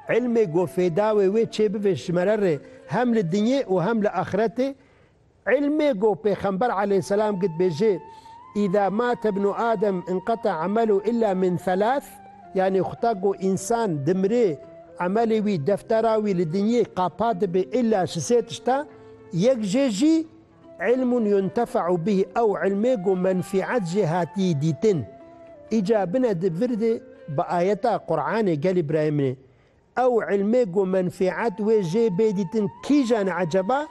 Îlmê ku fêdawê wê çê bibe ji me re rê hem li dinyê û hem li axiretê. Îlmê ku pêxember aleyhisselam gotbêjê, Îza mate ibnu Adem inqeta emelû îlla min thelath, yanî xuta ku însan dimrê emelê wî, deftera wî li dinyê qapa dibe îlla ji sê tişta, yek jê jî Ilm yuntefe'u bih ew ilmê ku menfî'et jê hatî dîtin. Îca bine di vir de bi ayeta Quranê gelî birayê min ê. Ew ilmê ku menfî'et wê jê bê dîtin kîjan e eceba?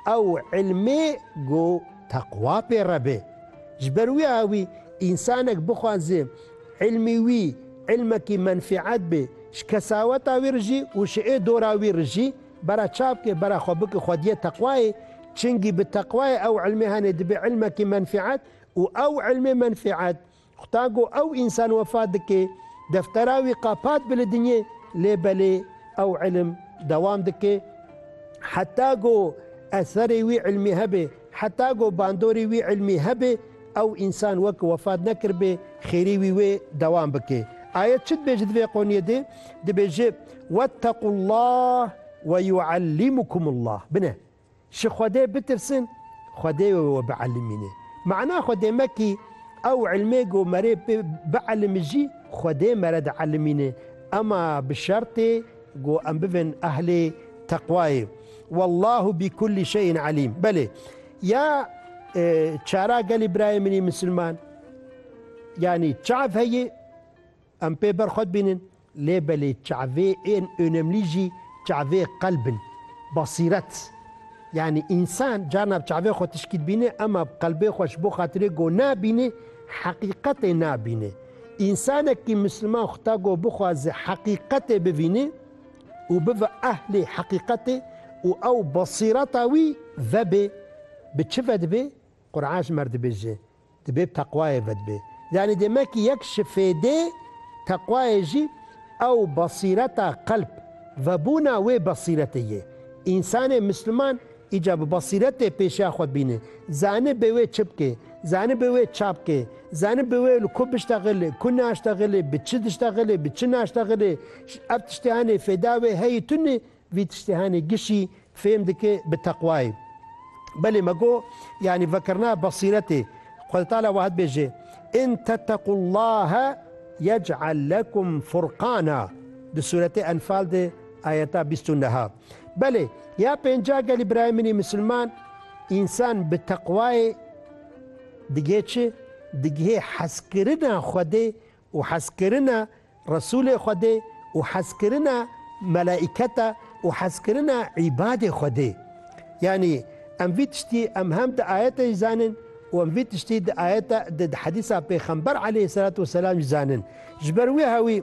Ew ilmê ku teqwa pê re be. Ji ber wiya wî însanek bixwaze ilmê wî ilmekî menfî'et be ji kesaweta wî re jî û ji ê dora wî re jî, Bera çap ke, bera xwe bike xwediyê teqwayê, çingî bi teqwayê ew ilmê hene dibe ilmekî menfîet û ew ilmê menfîet xuta go ew însan wefa dike, deftera wî qapat bi li dinyê lê belê ew ilm dewam dike heta go eserê wî ilmî hebe. Heta ku bandorê wî îlmî hebe, ew însan weke wefat nekiribê, xêrê wî wê dewam bike. Ayet çi dibêje di vê qoniyê de? Dibêje, Wettequllah ve yuallimukumullah. Bine, ji Xwedê bitirsin, Xwedê wê we bielimîne. Mana xwe dê mekî, ew îlmê ku me rê pê bielimijî, Xwedê me re dielimîne, ema bi şertê Ku em bibin ehlê teqwayê. Wallahu bi kulli şeyin alîm. Belê. Ya çara gelê birayê min ê misilman yanî çav heye em pê ber xwe dibînin lê belê çavê ên önemlî jî çavê qelb in basîret yanî însan carna bi çavê xwe tişkî dibîne ema bi qelbê xwe ji bo xatirê ku nabîne heqîqetê nabîne Însanekî misliman xuta ku bixwaze heqîqetê bivîne û bibe ehlê heqîqetê û ew besîreta wî vebe bi çi ve dibe? Qur'an ji me re dibêje, Dibê bi teqwayê ve dibe. Yanî demekî yek ji fêdê teqwayê jî ew besîreta qelb vebûna wê besîretê ye. Însanê misliman. Îca bi basîretê pêşiya xwe bîne. Zanî bê wê çi bike, zanî bê wê ça bike, zanî bê wê li ku biştexile, ku naştexile, bi çi diştexile, bi çi naştexile, ev tiştê hanê fêda wê heyî tune, vî tiştê hanê gişî fêm dike bi teqwayê. Belê me got, yanî vekirina basîretê. Xwedetala wiha dibêje, In tettequllahe yec'el lekum furqana, di sûretê Enfal de ayeta bîst û neh a. Belê, ya pênca gelî birayê min ê misilman, însan bi teqwayê digihê çi? Digihê hezkirina Xwedê û hezkirina Resûlê Xwedê û hezkirina melaîketa û hezkirina îbadê Xwedê. Yanî em vî tiştî em hem di ayete jî zanin û em vî tiştî di ayete di di hedîsa pêxember aleyhî selatû weselam jî zanin. Ji ber wê hewî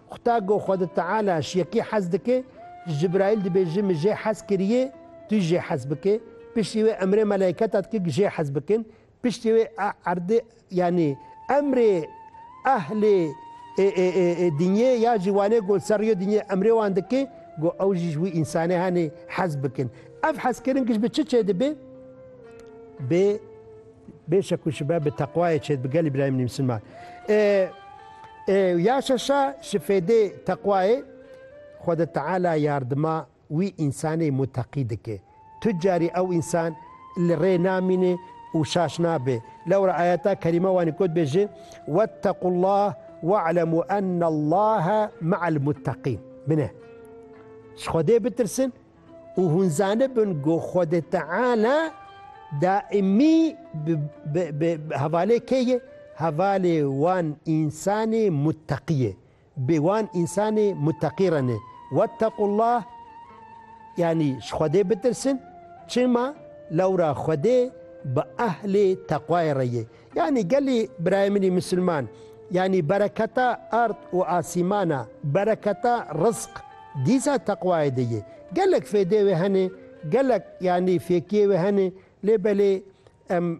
Xuda go Xwedi Teala ji yekî hez dike, ji Cibraîl dibêje min jê hez kiriye, tu jê hez bike. Piştî wê emrê meleîketa dike ku jê hez bikin. Piştî wê erdê yanî emrê ehlê dinyê ya jî wanê ku ser rêya dinyê emrê wan dike ku ew jî ji wî însanê hanê hez bikin. Ev hezkirin giş bi çi çêdibe? Bi. Bêşek û şibe bi teqwayê çêt bi gelî birayê min ê misilman. Ê ê ya şeşa şi fêdê teqwayê Xweda Teala yardima wî însanê muteqî dike. Tu carî ew însan li rê namîne û şaş nabe. Lewra ayeta kerîme wanî got be ji Wetequllah we'lemû ennallaha me'el muteqîn bine. Ji Xwedê bitirsin Û hûn zanibin ku Xwedê Teala daîmî bi hevalê kê ye? Hevalê wan însanê mutteqî ye. Bi wan însanê mutteqî re ne. Wettequllah yanî ji Xwedê bitirsin. Çima? Lewra Xwedê bi ehlê teqwayê re ye. Yanî gelê birayê min ê misilman, yanî bereketa ard û asîman a, bereketa rizq, dîsa teqwayê de ye. Gelek fêdê wê hene, gelek yanî fêkiyê wê hene lê belê em,